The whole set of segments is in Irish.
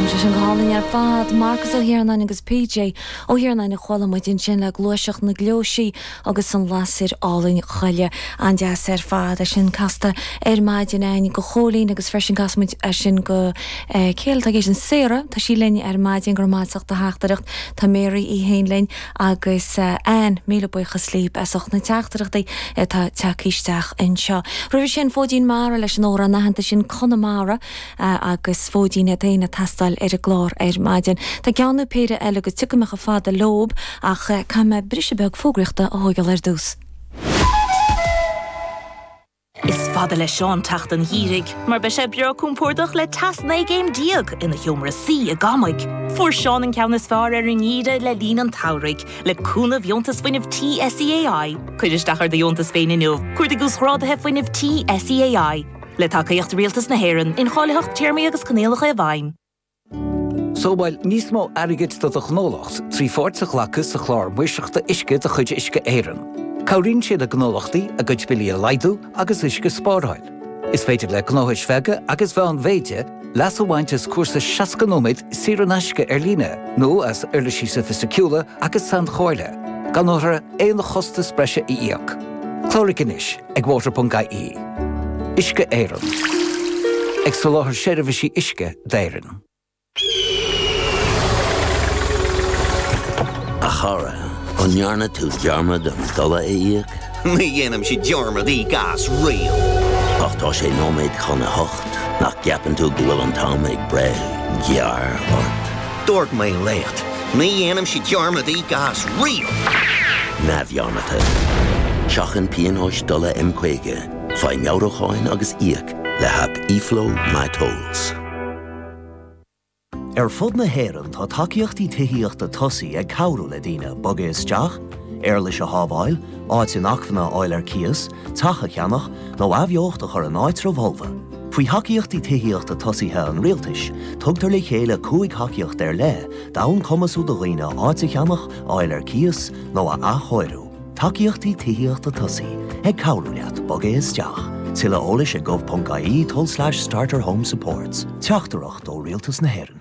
Sé sin go hálainn ar fad, Marcus Ó hIarnáin agus PJ Ó hIarnáin a chuala muid ansin le Gluaiseacht na Gleoisí agus an lasair álainn choille. An-deas ar fad. É sin casta ar maidin ann do Chóilín agus freisin chas muid sin do cé eile atá ag éisteacht? Sarah, tá sí linn ar maidin, go raibh maith as do theachtaireacht. Tá Mary í féin linn agus Anne, míle buíochas libh as ucht na teachtaireachtaí atá tagtha isteach anseo. Roimhe sin Fóidín Mara leis an amhrán aitheanta sin Conamara. agus fóidín é fhéin ag teastáil ar an gclár ar maidin. Tá ceann nó péire eile agus tiocfaidh mé chomh fada leob, ach caithfidh mé briseadh beag fógraíochta a thóigeáil ar dtús. Is fada le Seán teacht an Gheimhridh mar beidh sé breá cúmpórdach le teas 19 gcéim ina sheomra suí i gCamaigh. Fuair Seán an ceann is fearr ar an nGeimhreadh le linn an tSamhraidh, le cúnamh Dheontas Fuinnimh Tí SEAI. Cuir isteach ar do dheontas féin inniu, cuardaigh Uasghrádaithe Fuinnimh Tí SEAI. Le tacaíocht Rialtas na hÉireann, incháilitheacht Téarmaí agus Coinníollacha i bhfeidhm. Sábháil níos mó airgid do do ghnólacht trí pháirt a ghlacadh sa Chlár Maoirseachta Uisce de chuid Uisce Éireann. Cabhraíonn sé le gnólachtaí a gcuid billí a laghdú agus uisce a spáráil. Is féidir le gnóthais bheaga agus mheánmhéide leas a bhaint as cúrsa 60 nóiméad saor in aisce ar líne nó as uirlisí soifisticiúla agus sainchomhairle, gan orthu aon chostas breise a íoc. Cláraigh anois! Ag Water.ie. Uisce Éireann. Ag soláthar seirbhísí uisce d'Éirinn. A chara, an ndearna tú dearmad an dola a íoc? Ní dhéanaimse dearmad íoc as riamh! Ach tá sé nóiméad chun a hocht, nach gceapann tú go bhfuil an t-am ag breith gearr ort? Dúirt mé leat, ní dhéanaimse dearmad íoc as riamh! neamhdhearmadta. Seachain pionóis dola M50, faigh meabhrúcháin agus íoc le haip eFlow MyTolls. Ar fud na hÉireann tá tacaíochtaí tithíochta tosaigh ag cabhrú le daoine bogadh isteach, éarlais a shábháil, áit inacmhainne a fháil ar cíos, teach a cheannach nó athbheocht a chur in áitribh fholmha. Faoi thacaíochtaí tithíochta tosaithe an Rialtais, tugtar le chéile cúig thacaíocht ar leith d'fhonn cumasú do dhaoine áit a cheannach, a fháil ar cíos nó a athchóiriú. Tacaíochtaí Tithíochta Tosaigh, ag cabhrú leat bogadh isteach. Tuilleadh eolais ag gov.ie tulslais starterhomesupports. Teachtaireacht ó Rialtas na hÉireann.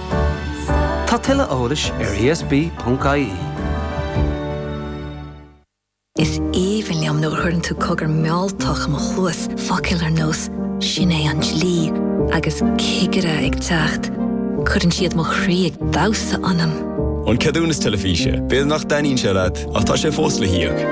Tá tuilleadh eolais ar ESB.ie. Is aoibhinn liom nuair a chuireann tú cogar mealltach i mo chluas, focail ar nós 'Sin é an dlí' agus 'cigire ag teacht'. Cuireann siad mo chroí ag damhsa ionam. An ceadúnas teilifíse. B'fhéidir nach dtaitníonn sé leat, ach tá sé fós le híoc.